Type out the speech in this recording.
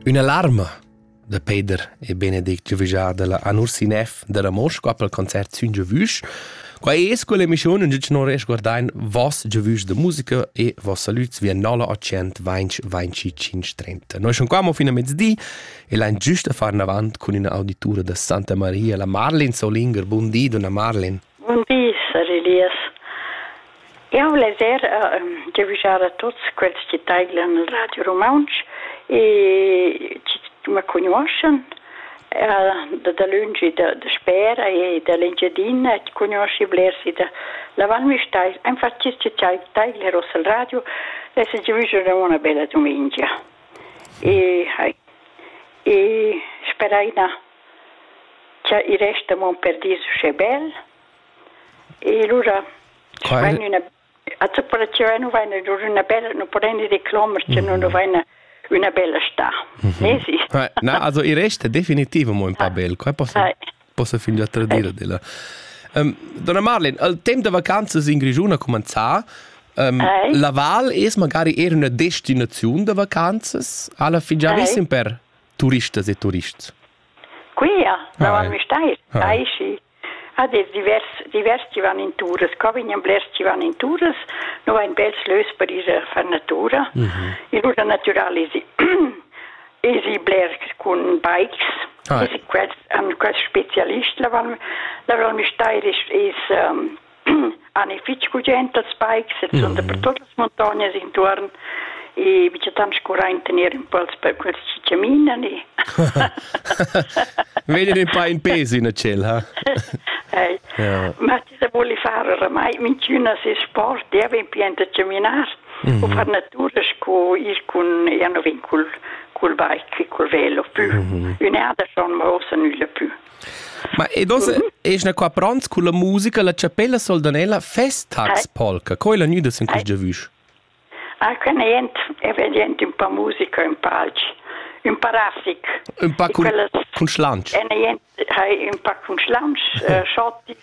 Üna larma da Peder e Benedict giovüjà da la Anursinef da Ramosch qua pel concert sün giavüsch. Quai es quell'emischiun ün non resguardain voss giavüsch da musica e voss salüts via 0800-202530. Noi sun qua mo fin a mezdi e lain giüst a far navant cun üna auditura da Santa Maria, la Marlin Solinger. Bun di, donna Marlin. Bun di, sar Elias. Jau leger e giavischar a tuts quels che taidlan il Radio Rumantsch e ma cugnuoschan da dalönch e dasper e da l'Engiadina e cugnuoschi blers e da Val Müstair. Infatti chi taidler ossa il radio e se giavischerà una bella dumengia. E, e sperai na Cha i resta mo per dis uschè bel. E lura vain üna atseperaziun e nu vaina lur üna bella, nu preni reclamas cha nu nu vaina üna bella stà. Nesi. Na, also i resta definitiv amo ün pa bel. Quai possa, possa fingià tradir d'ella. Um, donna Marlin, al temp da vacanzas in Grischun ha cumanzà. Um, la val es magari eir üna destinaziun da vacanzas? Alla fin già vessin per turistas e turists. Quia, la Val Müstair, aichi, ad es divers, divers chi van in turas. Qua vegnan blers chi van in turas, nu vain bels lös per ir a far natura. Mm -hmm. Il ruta natural es, es i bler cun bikes. Ah. Es quels, an quels specialist la Val, la Val Müstair es, es um, han ei fetg gugent als bikes e sun dapertut las montognas intuorn e michatant scurà in tener impuls per quels chi chaminan e Vegnan un pa in pes in tschel, ha? Ei. Ja. Ma ti se voli far oramai minchüna se sport, e vin pient a chaminar mm -hmm. o far natura sco ir cun io no vin cul cul bike, cul velo pü. Mm -hmm. Ün'erda schon ma osa nülla pü. Ma ed oz es na qua pronts culla musica la chapella soldanella Festtags, Polka. Co è la gnüda sin quist giavüsch? Ah, que ne jent, e vedi jent un pa musica, un pa alch, un pa rafig. Un pa cun, cun schlantsch. E ne jent hai un pa cun schlantsch, uh, schottis,